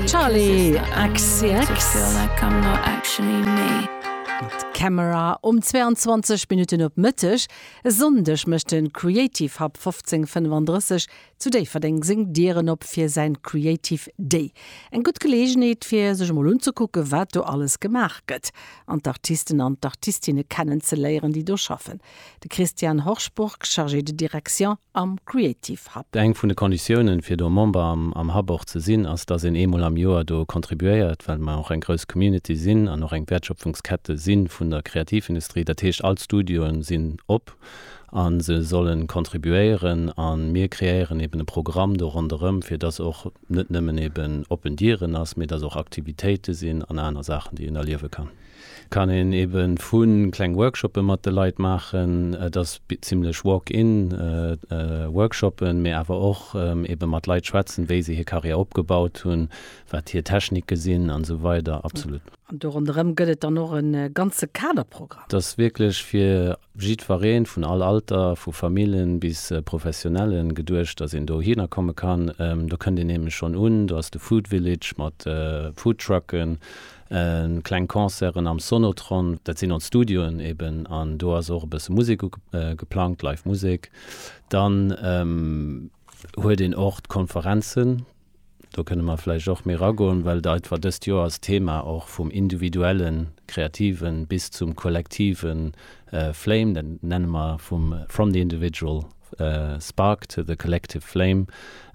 Charli XCX mat Camera um 22 Minutten op Mëtteg. E Sonndeg mécht de Creative Hub 1535 zu Déifferdeng seng Dieren op fir säin Creative Day. Eng gutt Geleegenheet fir sech emol unzekucken, wat do alles gemaach gëtt an d'Artisten an d'Artistinne kennenzeléieren, déi do schaffen. De Christian Horsburg, Chargé de direction am Creative Hub. Eng vun de Konditiounen, fir do Member am Hub och ze sinn, ass, dass een eemol am Joer do contribuéiert, well mer och eng grouss Community sinn an och eng Wäertschöpfungskette si vun der Kreativindustrie. Dat heescht, all d'Studioen sinn op a se sollen contribuéieren a mir kreéieren eeben e Programm do ronderëm, fir dass och net nëmmen eeben oppen Dieren ass, mee dass och Aktivitéite sinn an aner Saachen, déi een erliewe kann. Kann een eben vun kleng Workshoppen mat de Leit maachen, et ass zimlech walk-in Workshoppen, mee awer och eben mat Leit schwätzen wéi se hir Carrière opgebaut hunn, wat hir Techniken sinn an esou weider. Absolut. An do ronderëm gëtt et dann och e ganze Kaderprogramm. Et ass wierklech fir jiddfereen, vun all Alter, vu Famillen bis Professionellen, geduecht, dass een do hinner komme kann. Do kënnt een nämlech schonn un, do ass de Food Village mat Foodtrucken, kleng Concerten am Sonotron, dat sinn ons Studioen eben, an do ass och e bësse Musek geplangt, Live Musek. Dann huet een och d'Konferenzen, Do kënne mer vläicht och méi eragoen, well deit war dëst Joer als Thema och vum individuellen Kreativen bis zum kollektive Flame, dat nenne mer vum From the individual spark to the collective flame.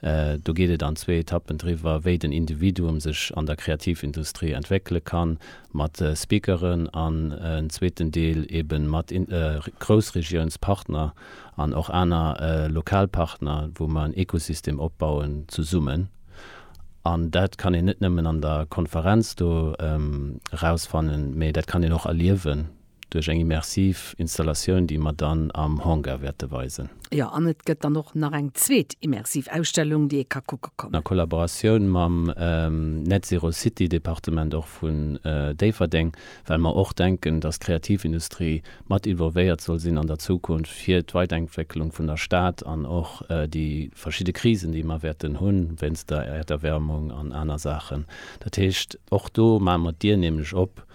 Do geet et an zwee Etappen driwwer, wéi den Individuum sech an der Kreativindustrie entwéckele kann, mat Speakeren, an en zweeten Deel eebe mat Groussregiounspartner. an och aner lokal Partner, wou mer en Ekosystem opbauen zesummen. An dat kann een net nëmmen an der Konferenz do erausfannen, mä dat kann een och erliewen duerch eng immersiv Installatioun, déi mer dann am Hangar wäerte weisen. Jo, an et gëtt dann och nach eng zweet immersiv Ausstellung, déi ee ka kucke kommen. A Kollaboratioun mam Net Zero City Departement och vun Déifferdeng well mer och denken, dass d'Kreativindustrie mat involvéiert soll sinn an der Zukunft fir d'Weidenkwécklung vun der Stad an och déi verschidde Krisen, déi mer wäerten hunn, wéinst der Erderwärmung an aner Saachen. Dat heescht, och do maache mer d'Dier nämlech op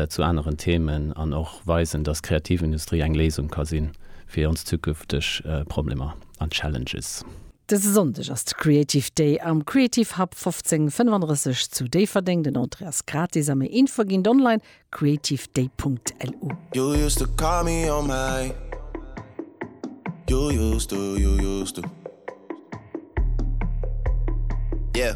zu aneren Themen an och weisen, dass d'Kreativindustrie eng Léisung ka sinn fir ons zukünfteg Problemer an Challenges. Dëse Sonndeg ass de Creative Day am Creative Hub 1535 zu Déifferdeng. Den Entrée ass gratis a méi Infoe ginn et online, creativeday.lu. You used to call me on my You used to, you used to Yeah